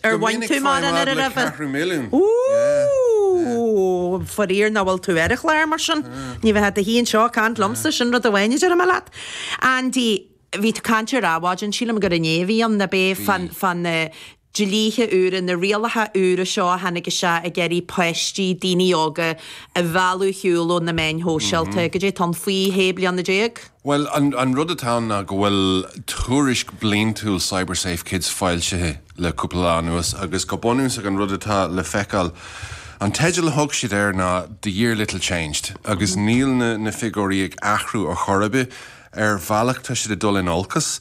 Ar bhain tú mórán airgid roimhe? Dominic Féadaim a rá ceathrú milliún. Oooh! Fairíor nach bhfuil tú ar an chlár mar sin. Ní bheifeá i do shuí anseo ag caint liomsa, sin rud amháin a déarfaidh mé leat. Andy, bhí tú ag caint ar Adhmhaidin, sílim gur inné a bhí ann, ab é? Bhí. Fán na dlíthe úra, na rialacha úra seo a tháinig isteach ag iarraidh páistí, daoine óga a mhealladh ar shiúl ó na meáin shóisialta. Go dtí tá siad faoi shé bliana déag. Bhuel, an rud atá ann ná go bhfuil tuairisc bliantúil CyberSafeKids foilsithe le cúpla lá anuas agus go bunúsach an rud atá le feiceáil, an teideal a thug siad air ná The Year Little Changed agus níl na figiúirí ag athrú ar chor ar bith. Ar bhealach tá siad ag dul in olcas.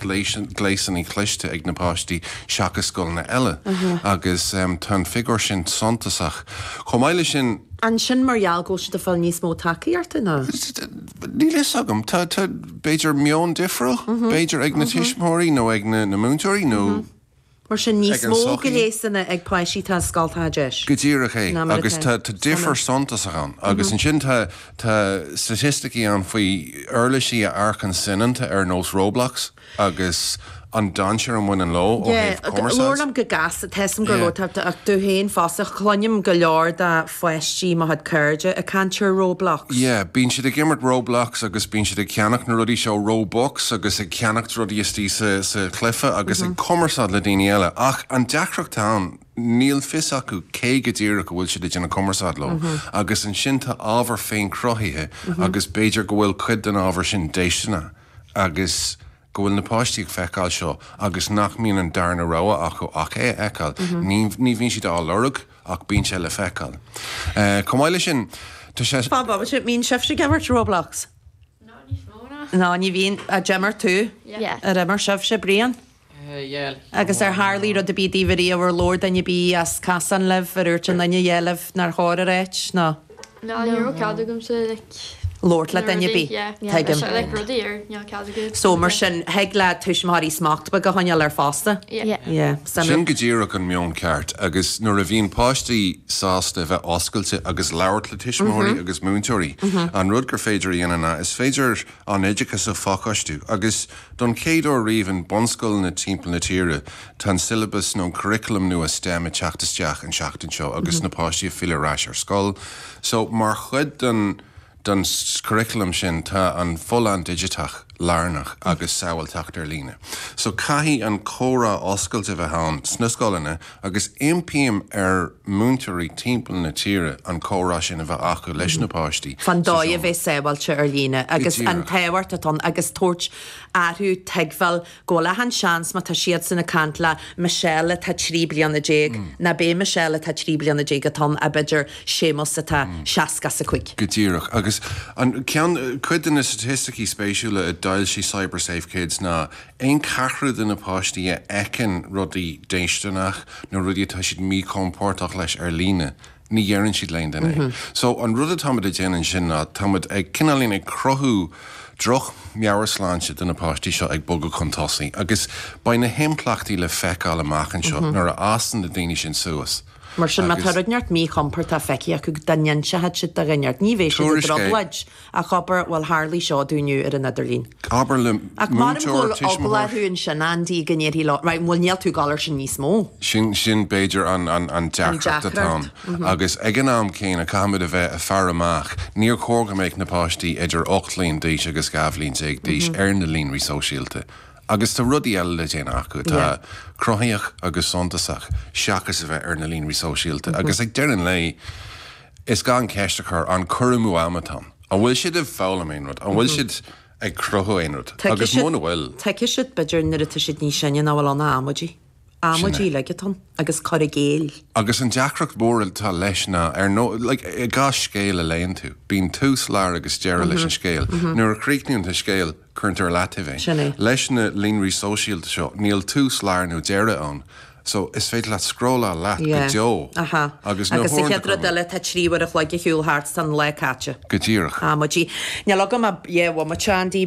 gléasanna cliste ag na páistí seachas scoileanna eile agus tá an figiúr sin suntasach. Chomh maith leis sin. An sin mar gheall go bhfuil siad ag fáil níos mó tacaíochta nó. Níl fhios agam. Tá b'fhéidir meon difriúil b'fhéidir ag na tuismitheoirí nó ag na múinteoirí nó. mar sin, níos mó gléasanna ag páistí, atá i scoltacha DEIS. Go díreach é, agus tá difear suntasach ann. Agus ansin tá staitisticí ann faoi uirlisí nó ardáin sainiúla ar nós Roblox agus an dainséar a bhaineann leo ó thaobh cumarsáid. Labhair liom go gasta, tá a fhios agam go leor, tá agat féin fosta, cluinim go leor de. pháistí mo chuid cairde ag caint ar Roblox. Yeah, bíonn siad ag imirt Roblox agus bíonn siad ag ceannacht na rudaí seo Robux agus ag ceannacht rudaí istigh sa chluife agus ag cumarsáid le daoine eile ach an deacracht ann níl a fhios acu cé go díreach a bhfuil siad ag déanamh cumarsáid leo agus ansin tá ábhar féin-cruthaithe agus b'fhéidir go bhfuil cuid den ábhar sin déisteanach agus go bhfuil na páistí ag feiceáil seo agus nach mbíonn an darna rogha acu ach é a fheiceáil. Ní ní bhíonn siad á lorg ach bíonn sé le feiceáil. Chomh maith leis sin, tá sé. Bob Bob An mbíonn sibhse ag imirt Roblox? Ní níos mó, no. No ní bhíonn. Ar d'imir tú? Yeah. Ar imir sibhse, Brian? Eh, yeah. Agus ar tharlaigh rud ar bith daoibh ariamh ar labhair duine ar bith as cosán libh ar úirt aon duine a dhath libh nár chóir a ráit, no? No ní raibh cead agamsa, like. labhairt le duine ar bith. Yeah. Yeah. Tuigim. Is é, like, rudaí ar ní raibh cead agat. So, So, mar yeah. sin, thig le tuismitheoirí smacht beag a choinneáil air fosta. Yeah. Yeah. Yeah. Sin Sin rud. go díreach an meon ceart. Agus nuair a bhíonn páistí sásta a bheith oscailte agus labhairt le tuismitheoirí agus múinteoirí, an rud gur féidir a dhéanamh ná, is féidir, an oideachas a phacáistiú, agus don chéad uair riamh i mbunscoileanna timpeall na tíre tá an siollabas nó an curriculum nua STEM ag teacht isteach an tseachtain seo agus na páistí ag filleadh ar ais ar scoil. So mar chuid den den curriculum sin tá an fholláine dhigiteach lárnach agus sábháilteacht ar líne. So caithfidh an comhrá oscailte a bheith ann sna scoileanna Agus impím ar múinteoirí timpeall na tíre an comhrá sin a bheith acu leis na páistí fán dóigh a bheith sábháilte ar líne, agus an tábhacht atá ann, agus tabhairt orthu tuigbheáil go bhfuil achan seans má tá siadsan ag caint le Michelle atá trí bliana déag nárbh é Michelle atá trí bliana déag atá ann, ach b'fhéidir Séamus atá seasca is a cúig. Go díreach. Agus an, ceann, cuid de na staitisticí spéisiúla a d'fhoilsigh CyberSafeKids ná Aon cheathrú de na páistí a fheiceann rudaí déistineach nó rudaí atá siad míchompordach leis ar líne, ní deireann siad le éinne é. So an rud atáimid ag déanamh ansin ná táimid ag cineáilín ag cruthú droch meabhairshláinte do na páistí seo ag bogadh chun tosaigh agus beidh na himpleachtaí le feiceáil amach anseo nuair a fhásann na daoine sin suas Mar sin má tá rud éigin míchompordach feicthe acu dá n-inseodh siad do dhuine éigin ní bheidh siad i dtrioblóid. Ach abair, bhuel tharlaigh seo dúinn inniu ar an idirlíon. Abair le múinteoir, tuismitheoir. Ach measaim go bhfuil eagla orthu ansin Andy go ndéarfar leo, right, bhuel níl tú ag gabháil air sin níos mó. Sin, sin b'fhéidir an, an, an deacracht atá ann. Agus ag an am céanna caithfimid a bheith ag faire amach, níor chóir go mbeadh na páistí idir ocht bhliain d'aois agus dhá bhliain déag d'aois ar na líonraí sóisialta. Agus tá rudaí eile le déanamh acu atá cruthaitheach agus suntasach seachas a bheith ar na líonraí sóisialta. Agus ag deireadh an lae, Is gá an cheist a chur, an cur amú ama atá ann? An bhfuil siad ag foghlaim aon rud? An bhfuil siad ag cruthú aon rud? Agus muna bhfuil. Tuigfidh siad b'fhéidir nuair atá siad níos sine nach bhfuil ann ach amaidí. Amaidí, ligean ort agus cur i gcéill. Agus an deacracht mhór atá leis ná ar ndóigh, like, i gcás scéil a léann tú, bíonn tús, lár agus deireadh leis an scéal. Nuair a chríochnaíonn tú scéal, Cuireann tú ar leataobh é. Sin é. Leis na líonraí sóisialta seo, níl tús, lár nó deireadh ann. So, is féidir leat scrólláil leat go deo. Yeah. Aha. Agus an chéad rud eile, tá trí uair a chloig ar shiúl thart, tá an lá caite. Go díreach. Amaidí. Níl agam ach, dhá bhomaite, Andy.